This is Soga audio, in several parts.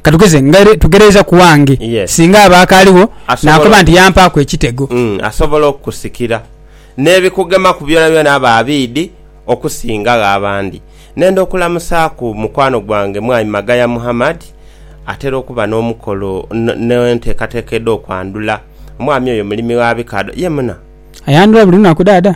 Ka tugeze nga aire tugereeza ku wange. Singa aba akaaliwo, naakoba nti yampaaku ekitego. Asobola okukusikira n'ebikugemaku byonabyona aba abiidhi okusingagho abandi. Nenda okulamusaaku mukwano gwange Mwami Magaya Muhammad, atera okuba n'omukolo n'enteekateeka edh'okwandhula. Omwami oyo mulimi wa bikaadho. Ye muna? Ayandhula buli lunaku, Dhaadha?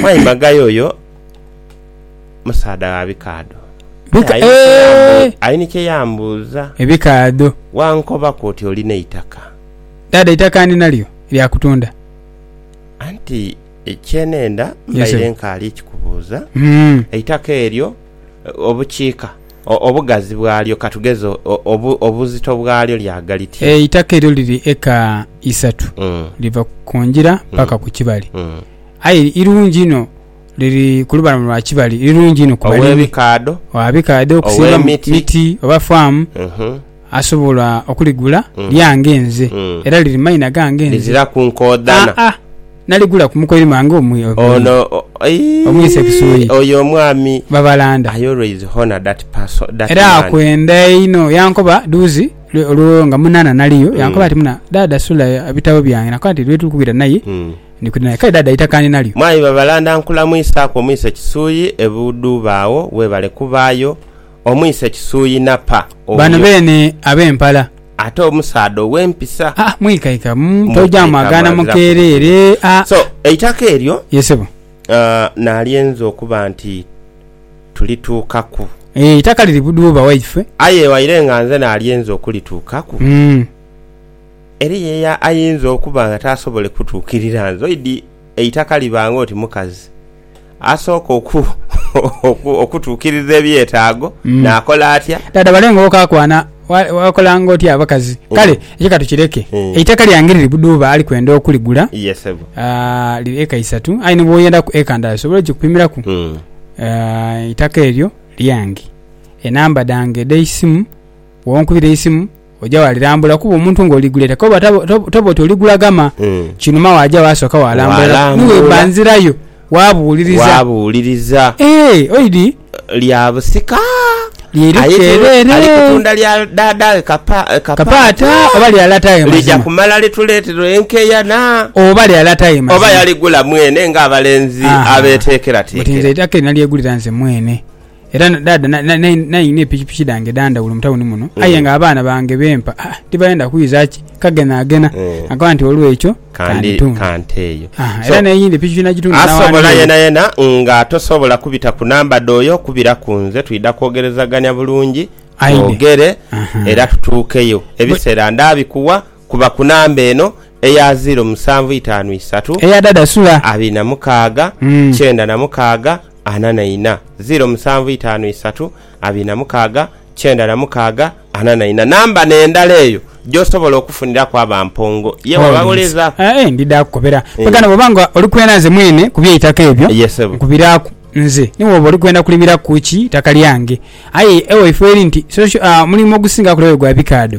Mwai Magayo oyo musaadha wa bikaadho. Aini kye yambuuza. Ebikaadho. Wankobaku oti oli n'eitaka. Dhaadha eitaka ndi nalyo lya kutunda. Anti kye nenda mbaire nkaali kikubuuza, eitaka eryo obukiika, obugazi bwalyo ka tugeze obuzito bwalyo lya gha liti? Eitaka eryo liri eka isatu, liva ku ngira paka ku kibali. aye irungi inho liri ku lubalama lwa Kibali, irungi inho ku balimi. Ow'ebikaadho. Ow'ebikaadho okusimba mu miti oba faamu asobola okuligula, lyange nze era liri mu maina gange nze. Liziraku nkoodhana. Aa, naligula ku mukoiri mwange omwi, Ono, aii, Omwise Kisoyi. oyo omwami Babalanda. I always honour that person, that Era man. akwenda einho. Yankoba dhuuzi lwe- olwo nga munana naliyo, yankoba ati, Muna, Dhaadha sula ebitabo byange. Nakoba nti, Lwe tuli kubira naye, Ndi kwidha nalyo. Kale Dhaadha aitakaane nalyo. Mwaayi Babalanda nkulamwisaaku omwise Kisuyi e Budhuba agho webale kubaayo. Omwise Kisuyi Napa Bano oyo. beene ab'empala. Ate omusaadha ow'empisa. Haa mwikaika mu toja mwagaana mukeereere haa. So eitaka eryo. Ye sebo. Nalyenza okuba nti tulituukaku. Eeh eitaka liri Budhuba waife. Aye waire nga nze nalyenza okulituukaku. Umm. Eriyo eyo ayinza okuba nga taasobole kutuukirira nzoidi eitaka liba ng'oti mukazi asooka okutuukiriza ebyetaago. Naakola atya? Dhaadha wale nga okaakwana wakola ng'oti abakazi. Kale ekyo ka tukireke. Eitaka lyange liri Budhuuba ali kwenda okuligula. Liri eka isatu aye ni bw'oyendaku eka ndala osobola ogikupimiraku. Eitaka eryo lyange. Enamba dhange edh'eisimu bw'onkubira eisimu. Oja walirambula kuba omuntu nga oliguleta koba toba oti oligula gama kinuma waja wasoka walambula niweba nzirayo wabuliriza wabuliriza eeh oidi lya busika lyerikyereere ali kutunda lya dada we kapaata oba lya lata we mazima lija kumala lituletere enkeyana oba lya lata we mazima oba yaligula mwene nga abalenzi abetekera tekera nti nze eitaka eri nalyegulira nze mwene. Era dhaadha nainha epikipiki dhange edha ndhawulo mu tawuni muno, aye nga abaana bange be mpa tibadhendha kwidha ki kagenhaagenha, nga nkoba nti olw'ekyo kanteeyo. Era n'eyindhi epikipiki nagitunda n'awa Neo. Asobola yenayena nga tosobola kubita ku namba dh'oyo kubira ku nze twidha kwogerezagania bulungi twogere era tutuukeyo. Ebiseera ndaabikuwa kuba ku namba eno eya ziiro musanvu itaanu isatu, abiri na mukaaga, kyenda na mukaaga, ana na ina, ziiro musanvu itaanu isatu abiri na mukaaga kyenda na mukaaga ana na ina. Namba n'endala eyo gy'osobola okufuniraku aba mpongo ye waba ghuliza. Aye ndi dha kukobera. Kwegana bw'oba nga oli kwena nze mwene ku by'eitaka ebyo nkubiraaku. Nze ni bw'oba oli kwenda kulimira ku ki itaka lyange. Aye ewaifo eri nti, Social, omulimu ogusingaku lero gwa bikaadho.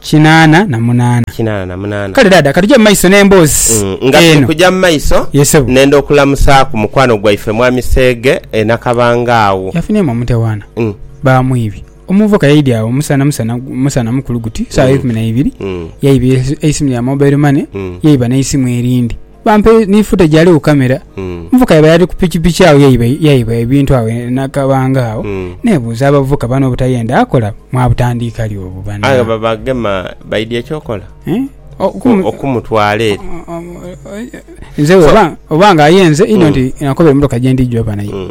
Kinaana na munaana. Kinaana na munaana. Kale dhaadha, ka tuje mu maiso n'emboozi eno. Mm, nga tuli kuja mu maiso, Ye sebo. nenda okulamusaaku mukwano gwaife Mwami Seege e Nakabanga agho. Yafunhyemu omutawaana. Mm. Baamwibye. Omuvubuka yaidye agho musana musana musana mukulu guti, saagha eikumi na ibiri, Mm. yaiba eisimu lya mobile money, Mm. yaiba n'eisimu erindi. bampe ni futa gyali ku kamera. Mm. Omuvuka yabaire ali ku pikipiki agho yaiba yaiba ebintu agho nakabanga agho Mm. nebuuza abavuka bano obutayenda akola mwabutandiika li obwo Aye bana. ba- bagema baidya ekyokola Eh? O- kumu- okumutwala eri. o- o- o- Nze oba oba nga ayenze ino Mm. nti nakobera emotoka gyendi jova nayo. Mm.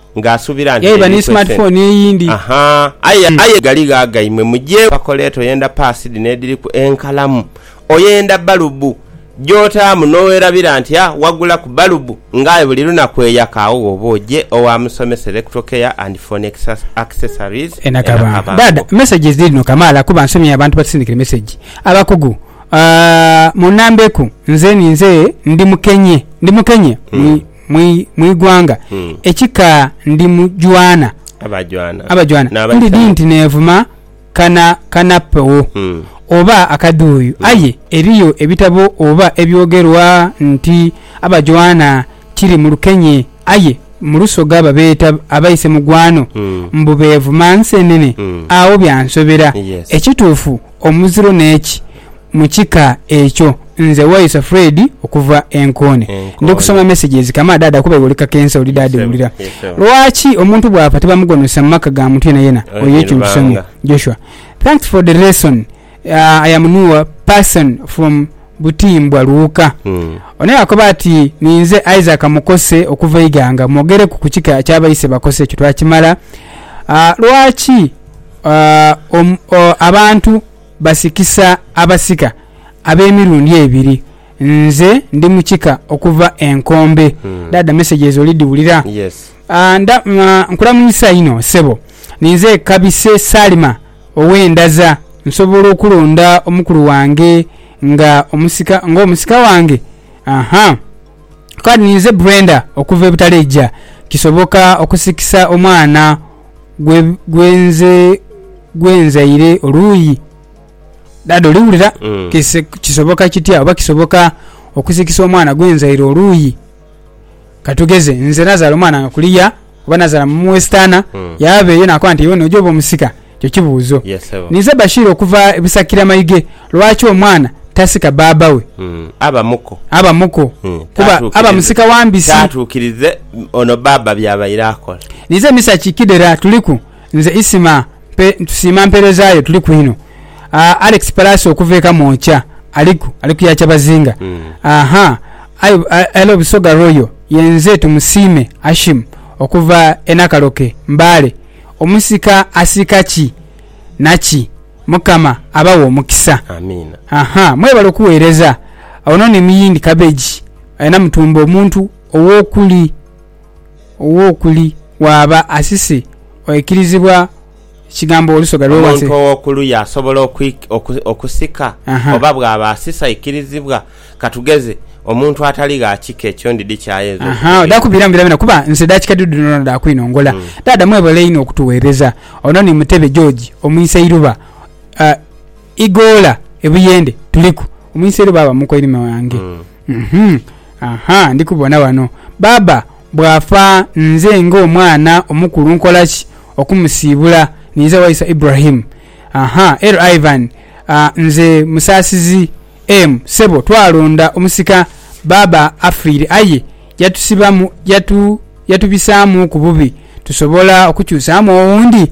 nga asubira nti yaiba ni smart phone eyindi. Ahaa aye aye galigho agaimwe mugye bakoleeta oyenda pass dhino edhiriku enkalamu, oyenda balubu gyotaamu nowerabira nti a wagulaku balubu nga aye buli lunaku eyaka agho woba ogye owa musomesa electro care and phone accessories e Nakabango. Dada messages dhiri dhino kamaala kuba nsomye abantu batusindikire message abakugu aah munambeku nze ninze ndi mukenye ndi mukenye. mu ighanga, ekika ndi mu jwana abajwana, ndidhi nti neevuma kana kanapogho oba akadhuuyu. Aye eriyo ebitabo oba ebyogerwa nti abajwana kiri mu lukenye, aye mu lusoga babeeta abaise mugwano, mbu beevuma nsenene. Agho byansobera. Ekituufu omuziro n'eki, mu kika ekyo nze Waisa Fred okuva e Nkoone. Ndi kusoma messages kama daada kuba iwe oli kakensa oli daadi wulira. Lwaki omuntu bwafa tibamugonozesa mu maka ga muntu yenayena oyo ekyo nkisomye Joshua thanks for the lesson I am nuwa person from Butimbwa Luuka. Ono yakoba ati ninze Isaac Mukose okuva Iganga mwogereku ku kika kya Baise Bakose ekyo twakimala lwaki abantu Basikisa abasika ab'emirundi ebiri. Nze ndi mu kika okuva e Nkombe. Dhaadha mesegi ezo oli dhiwulira? Yes. Nda, nkulamuisa inho sebo. Ninze Kabise Salima ow'e Ndaza. Nsobola okulonda omukulu wange nga omusika, ng'omusika wange? Aha. Kale ninze Brenda okuva e Butaleja. Kisoboka okusikisa omwana gwe nzaire oluuyi? Dada oli wulira? Kisoboka kitya oba kisoboka okusikisa omwana gwe nzaire oluuyi? Katugeze nze nazaala omwana nga kuliya oba nazala mu wesitaana mm. yaaba eyo nakoba nti yona oja oba omusika ekyo kibuuzo yes, nize bashiri okuva ebusakira mayige lwaki omwana tasika baaba we mm. aba muko aba muko mm. kuba aba musika wambisi tatukirize ono baaba byabaire akola nize misaki kidera tuliku Nze Isima mpe ntusiima mpeereza yo tuli kwino aah Alex Palaso okuva e Kamwokya aliku ali ku ya Kyabazinga ahaa aye I love Busoga Royal yenze Tumusiime Hashim okuva e Nakaloke Mbale omusika asika ki naki Mukama abaghe omukisa Amiina. ahaa mwebale okuweereza Ono ni Muyindi Cabbage alina mutumba omuntu owokuli. ow'okuli bw'aba asise oikirizibwa ekigambo olusoga lwe wansi. Omuntu ow'okuluya asobola okusika oba bw'aba asise aikirizibwa. Ka tugeze, omuntu atali gha kika ekyo ndidhi ki ayinza okukubira? Odha kubiramu byonabyona kuba nsi dha kika dhudhu dhoonadhoona dha kwinongola. Dhaadha mwebale inho okutugheereza. Ono ni Mutebe George Omuiseiruba, Igoola e Buyende. Tuliku. Omuiseiruba aba mu koirime wange. Uhmm-aha, ndi kubona wano. Baaba bw'afa nze ng'omwana omukulu nkola ki okumusiibula ninza waisa Ibrahim? Aha, er Ivan, nze Musaasizi em, ssebo twalonda omusika baaba afiire aye yatusibamu yatu yatubisaamuuku bubi tusobola okukyusaamu owundi?